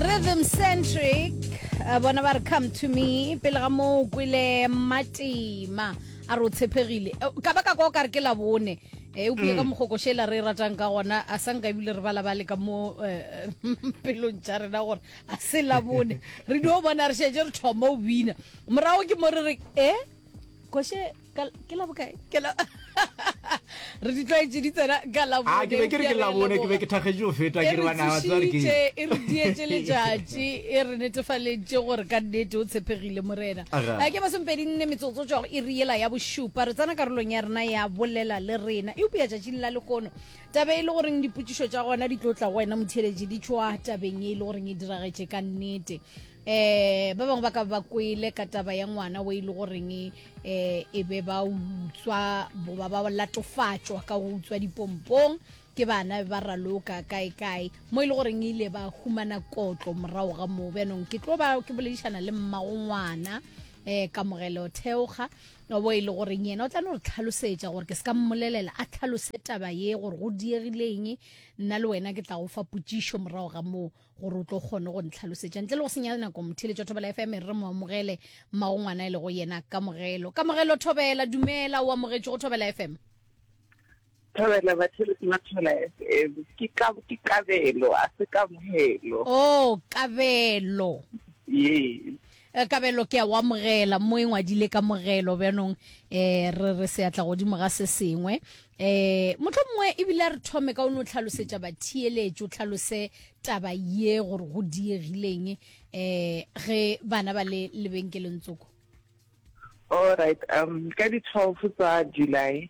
rhythm centric eh, bona ba re come to me pele ga moo o kwele matima a re o tshepegile Eh, ka baka kwa o ka re ke labone e o bue ka mogokošela re e ratang ka gona a sa nka ebile re bala bale ka mo eh, pelong tša rena gore a se labone re dio bona re šetse re thoma o bina morago ke mo re re e koše ke la bokae ke la re di tlwaetse di tsena ka labone ke be ke re ke labone ke be ke thakgetše go feta ke re bana ba tswa ke e re dietse letšatši e re netefaletše gore ka nnete o tshepegile morena a ke ba sempedi nne metsotso tswa go e re ela ya bošupa re tsena karolong ya rena ya bolela le rena e upea tšatšing la lekono tabe e le goreng dipotšišo tša gona di tlo tla go wena motheletši di tšwa tabeng e le goreng e diragetše ka nnete eh ba bangwe ba ka ba kwele ka taba ya ngwana o e le goreng eh e be ba utswa boba ba latofatšwa ka go utswa dipompong ke bana ba raloka kae kae mo e le goreng e ile ba humana kotlo morago ga moo bjanong ke tlo ba ke boledišana le mmago ngwana eh kamogelo theoga bo e le goreng yena o tla no re tlhalosetša gore ke se ka mmolelela a tlhalose taba ye gore go diegileng nna le wena ke tla go fa potsišo morago ga moo gore o tlo kgone go ntlhalosetša ntle le go senyala nako motheletša thobela fm re mo amogele mmago ngwana e le go yena kamogelo kamogelo thobela dumela o amogetše go thobela fm thobela batheletsi ba thobela fm ke kabelo a se kamogelo o oh, kabelo yes Eh, kabelo ke a wa mogela mo e ngwadile ka mogelo bjanong eh re re se atla godimo ga se sengwe eh motho mongwe e bile re thome ka o no tlhalosetsa bathiyeletso tlhalose taba ye gore go diegileng eh ge bana ba le lebenkeleng tsoko all right um ka di 12 tsa july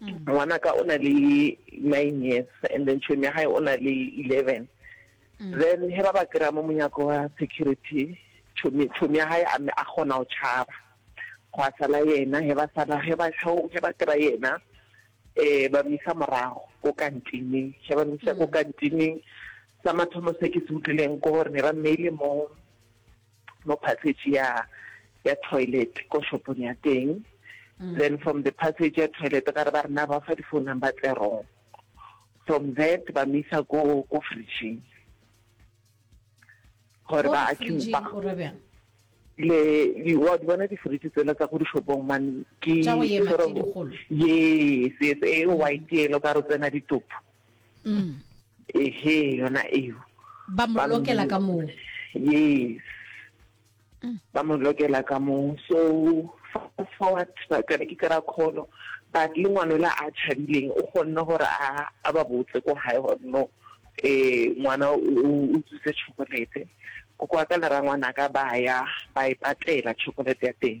Ngwanaka o na le nine years and then tšhomi ya gae o na le eleven. Mm. Then he ba ba kry-a mo monyako wa security, tšhomi ya gae a kgona go tšhaba. Go a sala yena, he ba sala, he ba kry-a yena, um ba misa morago ko kantineng. He ba misa ko mm. kantineng, sa mathomo se ke se utlwileng ko gore ne ba mmeile mo mo passage ya ya toilet ko shopong ya teng then from the passage ya toilet gare ba rena ba fa di-phone number tse wrong from that ba misa ko ko fridging gore ba accumba le wa di bona di-fridge tsela tsa go dishopong mane ke yes yes e white yelo ka re tsena ditopo mm. ehe yona eo ba mo lokela ka moo yes mm. ba mo lokela ka moo so fast forward ba kare ke kra kholo but le ngwana la a tshabileng o kgonne gore a a ba botse ko hae gore no eh ngwana o tsuse chocolate ko kwa ka le rangwana ka ba ya ba e patela chocolate ya teng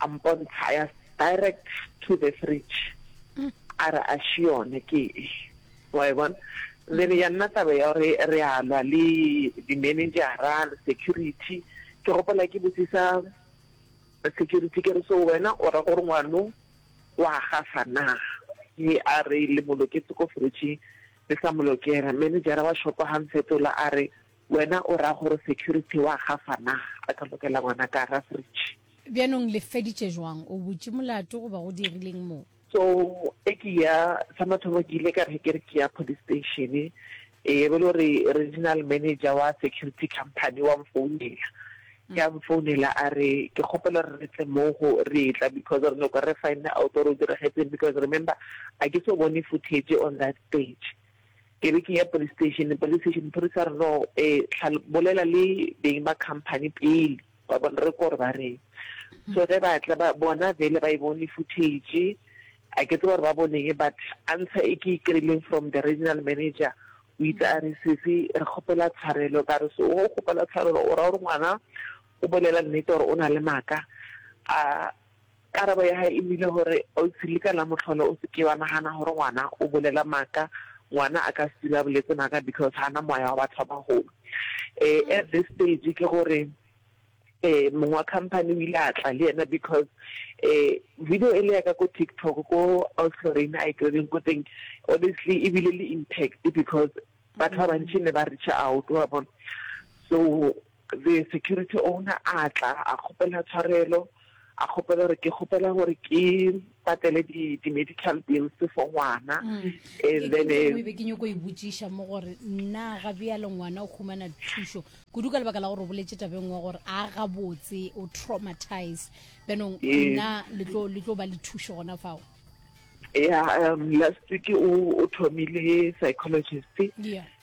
a mpontsha ya direct to the fridge a re a še yone ke e wa e bona then ya nna taba ya gore re a lwa le di-managera le security ke gopola ke botsisa security ke re so wena o ra gore ngwano wa gafa na mme a re le mo loketse ko fridgeng le sa mo lokela managera wa shopo ga mfetola a re Wena o ra gore security wa gafa na? Re ka lokela ngwana ka gara fridge. Bjanong le feditše jwang? O butše molato goba go dirileng mo? So e ke ya, sa mathomo ke ile ka re ke re ke ya police station, e be le gore regional manager wa security company wa mfounela. Ke a mfounela a re ke kgopela gore re tle mo go re etla because re nyoko re find out gore o diragetseng because remember a ke so bone footage on that stage. Ke be ke ya police station, police station maphodisa a re no um bolela le beng ba company pele wa bona re kore ba reng. So ge ba tla ba bona vele ba e bone footage, a ke tsebe gore ba boneng but answer e ke e kry-ileng from the regional manager o itse a re sesi re kgopela tshwarelo ka re so o kgopela tshwarelo o ra gore ngwana o bolela nnete or o na le maaka a Karabo ya hae e nnile gore, Ausi, le ka la mohlolo o se ke wa nagana gore ngwana o bolela maaka. Ngwana a ka se dule a boletse maaka because ga a na moya wa batho ba bagolo. At this stage ke gore mong wa company o ile a tla le yena because video ele ya ka ko TikTok ko Ausi Lorraine a e tlogeleng ko teng honestly e bile le impact because batho ba bantši ne ba reach-a out, wa bona. So. The security owner a tla a kgopela tshwarelo, a kgopela gore ke kgopela gore ke patele di, di medical bills for ngwana mm. and then eh, be ke nyoko e botšiša mo gore nna ga bjale ngwana o humana thušo kudu ka lebaka la gore o boletse tabeng wa gore a ga botse o traumatized benong nna le tlo ba le thušo gona fao ya um last week o thomile psychologist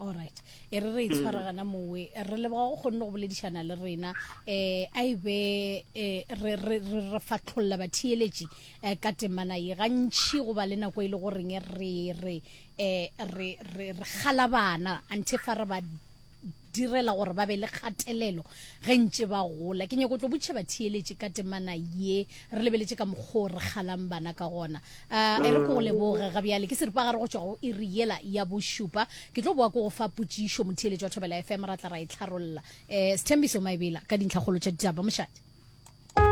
alright e re re itshwaragana mowe re leboga go kgonne go boledišana le rena um a e be eh, re re re fatlholla batheeletši um ka temana ye gantšhi go ba le nako e le goreng re re um re re re galabana anthe fa re ba direla gore ba be le kgatelelo ge ntše ba gola. Ke nyako tlo botšhe batheeletši ka temana ye, re lebeletše ka mokgoo re kgalang bana ka gona. A e re ko go leboge ga bjale, ke seripagare go tšwa go iri yela ya bošupa. Ke tlo boa ko go fa potšišo motheeletši wa Thobela FM, ra tla ra e tlharolla. E, Sthembiso Maebela ka dintlhakgolo tša ditaba, mošate.